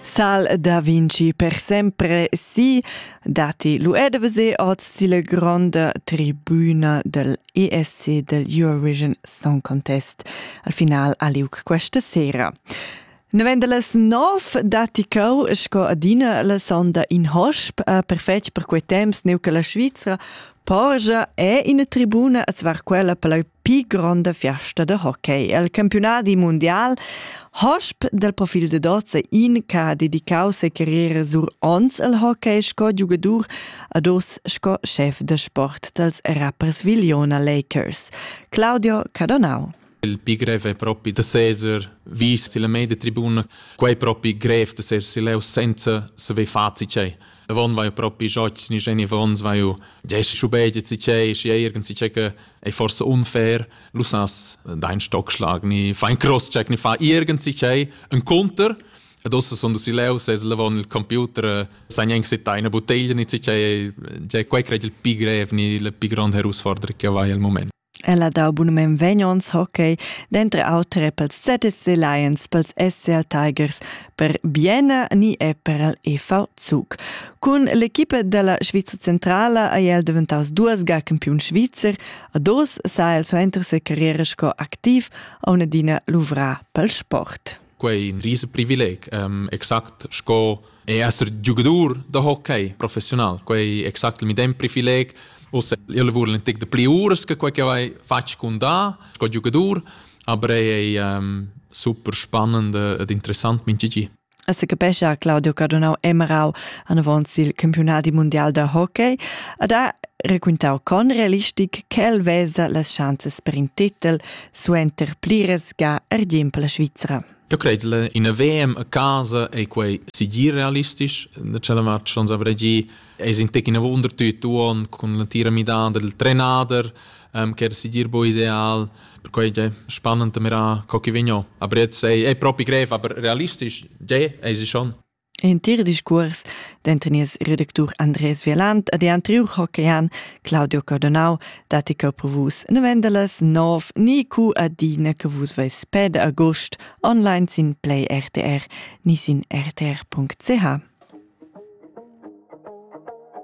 Sal da Vinci per sempre sì, dati l'UEDVC oz la gronda tribuna del ESC del Eurovision Song Contest al final aliuc questa sera. Novemdeles nov dati cau sco adina la sonda in hosp, eh, perfetg per quei temps neu che la Svizzera Porsche è in tribuna, azzvar quella per la pii gronda fiasta da hockey. El campiunadi mundial hosp dal profil de dozza in che ha dedicau se carriera sur ons al hockey sco giugadur ad os sco chef de sport dals Rapperswil-Iona Lakers. Claudio Cadonau. Il pi grev è propi da seser vis la media tribuna. Quai propi grev da seser leu senza saver facit cei. Von vai propi jotz ni Jenny Vons vai u Jesse Schubeit si che si irgend si che è forse unfair lu sas dein Stockschlag ni fein cross check ni fa irgend si che ein Konter Adesso sono si leu se levon il computer san eng sit eine bottiglia ni ci che che quei cred il pi grev ni le pi grande herausforderung che vai al moment Ella dau bunamain vegnons hockey, denter auter er pels ZSC Lions, pels SCL Tigers, per Bienna ni er per el EV Zug. Cun l'equipa della Svizra centrala ei el daventaus duas ga campiun svizzer, a dos sa el suenter sa carriera sco activ a un'adina luvra pel sport. Quei in rise privileg, um, exact sco e esser giugadur da hockey professional. Quei exact il medem privileg. Usse, io lavora l'antic de pli uras che quei che vai fatg con da, sco giugadur, aber ei è um, super spannend ed interessant min gigi. E se capescia Claudio Cardonau Emerau anavant sil campionati mondial da hockey ed ha raquintau con realistic ch'el vesa las chanzas per in titel suenter pliras ga argimp la Svizra. Eu credel, in VM a casa ei quei sigir realistisch. Da cella match schon avrei gi, es in tec in wundertüt uon con la tira midada del trenader, ähm, che era sigir bo ideal. Per quei è spannend mira co chi vegno. Aber jetzt ei, ei propi grev, aber realistisch, je, ei sie schon. Entir discuors denter nies redactur Andres Vialant e dian triu hockeyan Claudio Cardonau datti cheu per vus novendalas nov ni cu adina che vus veis ped agost online sin Play RTR ni sin rtr.ch.